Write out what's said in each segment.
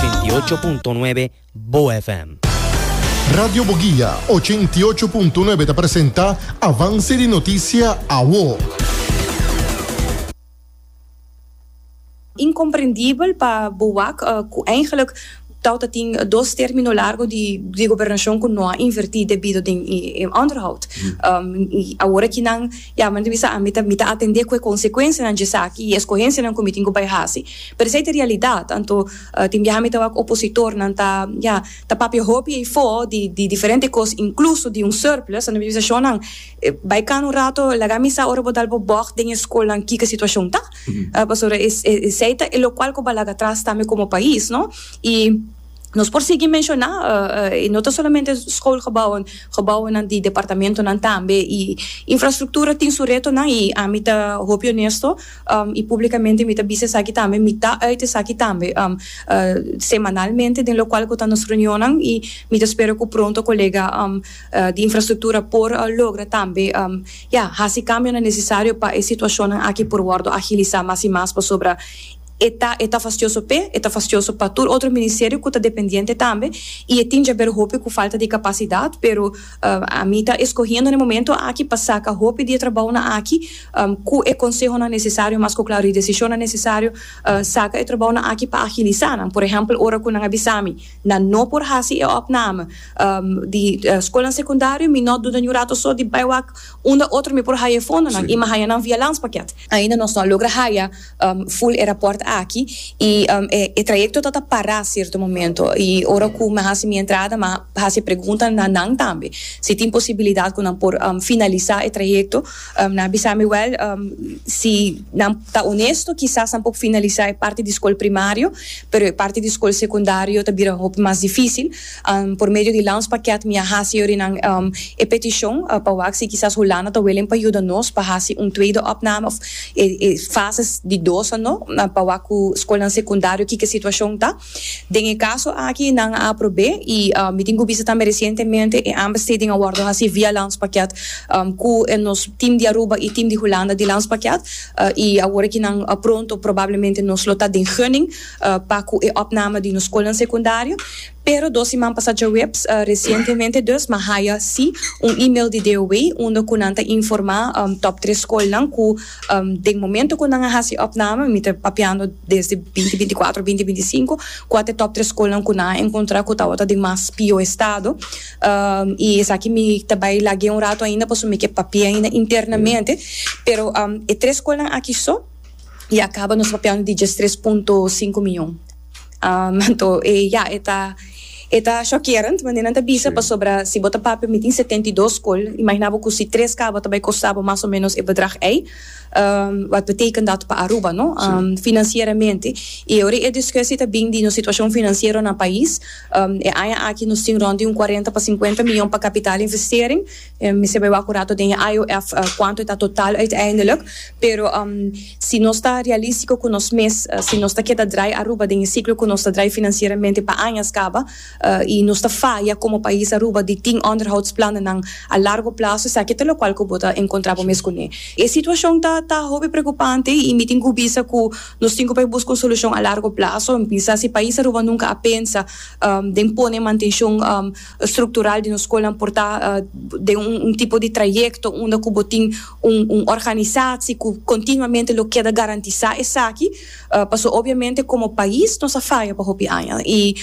Ochenta i ocho punto nuebe BoaFM. Radio Boguia ochenta i ocho punto nuebe ta presenta Avance di Noticia Awo. Incomprendibel pa BOAC cu eigenlik tau ta tin dos termino largo di gobernacion cu no a inverti debido den e onderhoud. Y awor aki nan yaman di mi sa ami ta mi ta atende cu e consecuencianan dje esaki y e escogencianan cu mi tin cu bay haci. Pero esei ta realidad, anto tin biaha mi ta wak opositornan ta, ya, ta papia hopi eifo di di diferente cos, incluso di un surplus, anto mi bisa shonnan, bai cana un rato, laga mi sa ora bo dal bo bog den e scolnan kico e situacion ta, pasobra es esei ta e locual cu bo a laga atras tambe como pais, no? Y nos por sigui menciona, y no ta solamente scolgebouwen, gebouwennan di departamentonan tambe, y infrastructura tin su retonan y ami ta hopi honesto, I publicamente mi ta bisa esaki tambe, mi ta uit esaki tambe semanalmente den locual cu ta nos reunionnan i mi ta spera cu pronto colega di infrastructura por logra tambe ya haci cambionan necesario pa e situacionnan aki por wordo agilisa mas i mas pasobra e ta e ta fastioso p'e, e ta fastioso pa tur otro ministerio cu ta dependiente tambe i e tin djaber hopi cu falta di capacidad pero. Ami ta eskohiendo na e momento aki pa saka hopi di e trabounan aki ku e konsehonan nesesario, mas ku klaru e desishonnan nesesario, saka e trabounan aki pa agilisá nan. Por ehèmpel, ora ku nan a bisa mi nan no por hasi e òpname di skolnan sekundario, mi no duda ni un rato so di bai wak unda otro mi por haya e fondonan i mi a haya nan via lanspakèt. Ainda nos no a logra haya Full e raport aki y e trayecto ta ta para cierto momento y ora cu me haci mi entrada me haci pregunta na nan tambe si tin posibilidad cu nan por finalisa e trayecto nan a bisa mi wel si nan ta honesto kisas nan por finalisa e parti di school primario pero e parti di school secundario ta bira hopi mas dificil. Por medio di Lounge Pakket mi a hasi yorinan e petishon pa wak si kisas Hulanda ta willing pa yuda nos pa hasi un tweede opname òf e fase di dos anó pa wak ku skolnan sekundario kiko e situashon ta. Den e kaso aki nan a aprob'é i mi tin ku bisa tambe resientemente e aanbesteding a wòrdu hasi via Lounge Pakket ku nos tim di Aruba i tim di Hulanda di Lounge Pakket i awor aki nan pronto probablemente nos lo ta den gunning. pa cu e opname di nos scolnan secundario, pero dos siman pasa djaweps, recientemente dus, mi a haya si un email di DOW unda cu nan ta informa top tres scolnan cu den momento cu nan a haci e opname, mi ta papiando desde binti binti cuatro, binti binti cinco, cu a ta e top tres scolnan cu nan a encontra cu tawata den mas pio estado, y esaki mi ta bay lag'e un rato ainda pasobra mi ke papia ainda internamente, pero e tres scolnan aki so. y a caba nos papia un digits tres punto cinco miyon. Um, anto e ya, e ta, e ta shockerend manera nan ta bisa, Sí. pasobra si bo ta papia mi tin setenta y dos school, imagina bo cu si tres caba ta bay costa bo mas o menos e bedrag ey, um, wat beteken dat pa Aruba, no? Sí. Um, financieramente. Y ora e discusi ta bin di nos situacion financiero na pais, um, e aña aki nos tin rond di un cuarenta pa cincuenta miyon pa capital investering, Mi sebe wak un rato den e IOF kuantu e ta total uiteindelik, pero si nos ta realístiko ku nos mes, si nos ta keda drai Aruba den e siklo ku nos ta drai finansieramente pa añas kaba i nos ta faya komo pais Aruba di tin onderhoudsplannennan a largo plazo, esaki ta lokual ku bo ta enkontrá bo mes kuné. E situashon ta ta hopi preokupante i mi tin ku bisa ku nos tin ku por buska un solushon a largo plazo. Mi pensa si pais Aruba nunka a pensa den pone mantenshon. struktural di nos skolnan por ta den un tipo di trayekto unda ku bo tin un un organisasi ku kontinuamente lo keda garantisá esaki pasobra obiamente komo pais nos a faya pa hopi aña i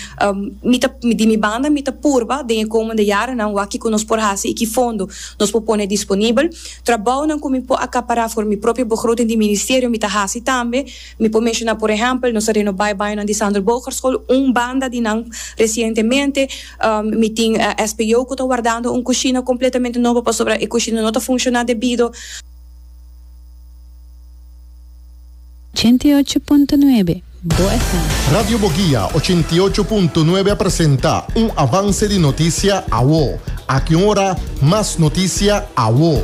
mi ta di mi banda mi ta purba den e komende yarenan wak kiko nos por hasi i ki fondo nos por pone disponibel trabounan ku mi por akapará for mi propio begroting di ministerio mi ta hasi tambe. Mi por menshoná por ehèmpel, nos a renobá e bañonan di Sander Boogerschool, un banda di nan resientemente. Mi tin SPO ku ta wardando un kushina kompletamente nobo pasobra e kushina no ta funshoná debido. Ochenta i ocho punto nuebe Bo FM. Radio Boguia ochenta i ocho punto nuebe a presenta un avance di notisia awo. Aki un ora mas notisia awo.